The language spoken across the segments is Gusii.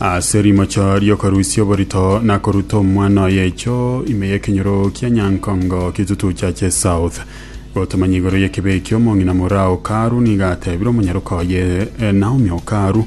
Ase rimocho ri'okorusia oborito na koruta omwana oye echo ime y'ekenyoro kia Nyankongo kitutucha che South gotomanya igoro y'ekibe ekio omong'ina moraa o Karu nigo atebire omonyaroka oye eh, Naomi o Karu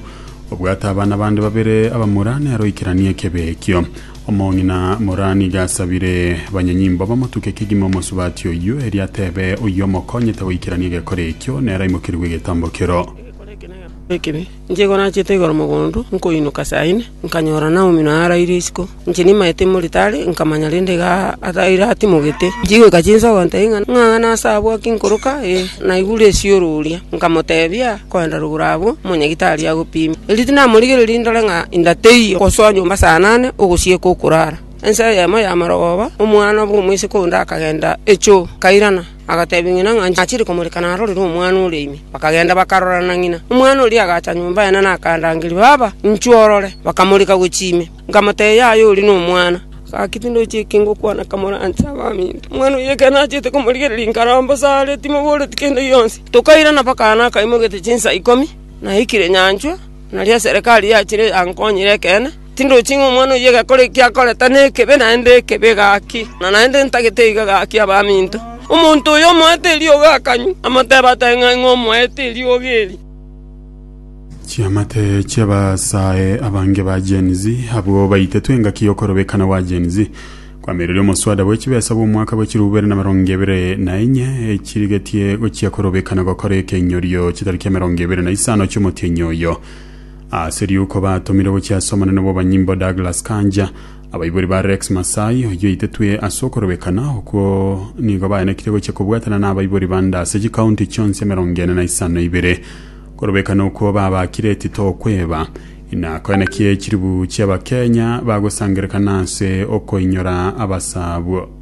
obwate abana bande babere abamura nero ikeranie ekibe ekio omong'ina moraa nigo asabire banyanyimbo bamotuke kegima omosubati oyio erio atebe oyio omokonyete goikerania egekore ekio nero aimokerigwe egetambo kero Egekore eke negekore ekibe. Inche igo nachete igoro mogondo, nkoinyoka saa ine, nkanyora Naomi na araire isiko. Inche nimaete imoritari, nkamanya rende iga iratimogete. Chigoika chinsa ogotebia ng'a ng'ang'ana ase abwo aki nkoroka, ee, naigure esioro oria. Nkamotebia, Koenda rogoro abwo, omonyagitari agopime. Erio tinamorigereiri ndore ng'a inda teiyo, gosoa nyomba saa nane ogosieka okorara. Ensa eyemo y'amarogoba, omwana bw'omoiseke onde akagenda echoo, kairana. Agateebia ng'ina ng'a achire komoreka narorire omwana oria ime. Bakagenda bakarorana ng'ina. Omwana oria agacha nyomba yaane na akandangeria, 'Baba, inchuo orore.' Bakamoreka gochia ime. Nkamoteebia, 'Yaya, ori nomwana. Gaki tindochi eke ngokwana kamoranse abaminto. Omwana oyio ekero nachete komorigereria inkare ombosa are, timoboreti kende gionsi. Tokairana mpaka aane akaimogete chinsa ikomi, naikire nyanchwa, nario eserekari yachire yankonyire ekeene. Tindochi ng'a omwana oyio egekore eki akorete nekebe, naende ekebe gaki, na naende ntagete iga gaki abaminto. Omonto oyo omoete eriogi akanywa, amotebe ata ng'a ing'o omoete eriogi eri? Chiamate chi'abasae abange ba Gen Z abwo baitetwe engaki y'okorobekana gwa Gen Z kwamireria omoswada bwe chibesa bw'omwaka bwe chirobu bibere na emerongo ebere na enye echirigetie gochia korobekana gokora ekenyorio chitari kia emerongo ebere na isano chi'omotienyi oyo. Ase riuko batomirwe gochia ase omonene bw'obonyimbo Douglas Kanja, abaibori ba Rex Masai, oyio oitetwe ase okorobekana, okwo nigo baenekire gochia kobwatana na abaibori bande ase chikaunti chionsi emerongo ene na isano ibere. Korobekana okwo babakire etito okweba, inakoenekie chilibu chi'Abakenya bagosangererekana ase okoinyora abasabwo.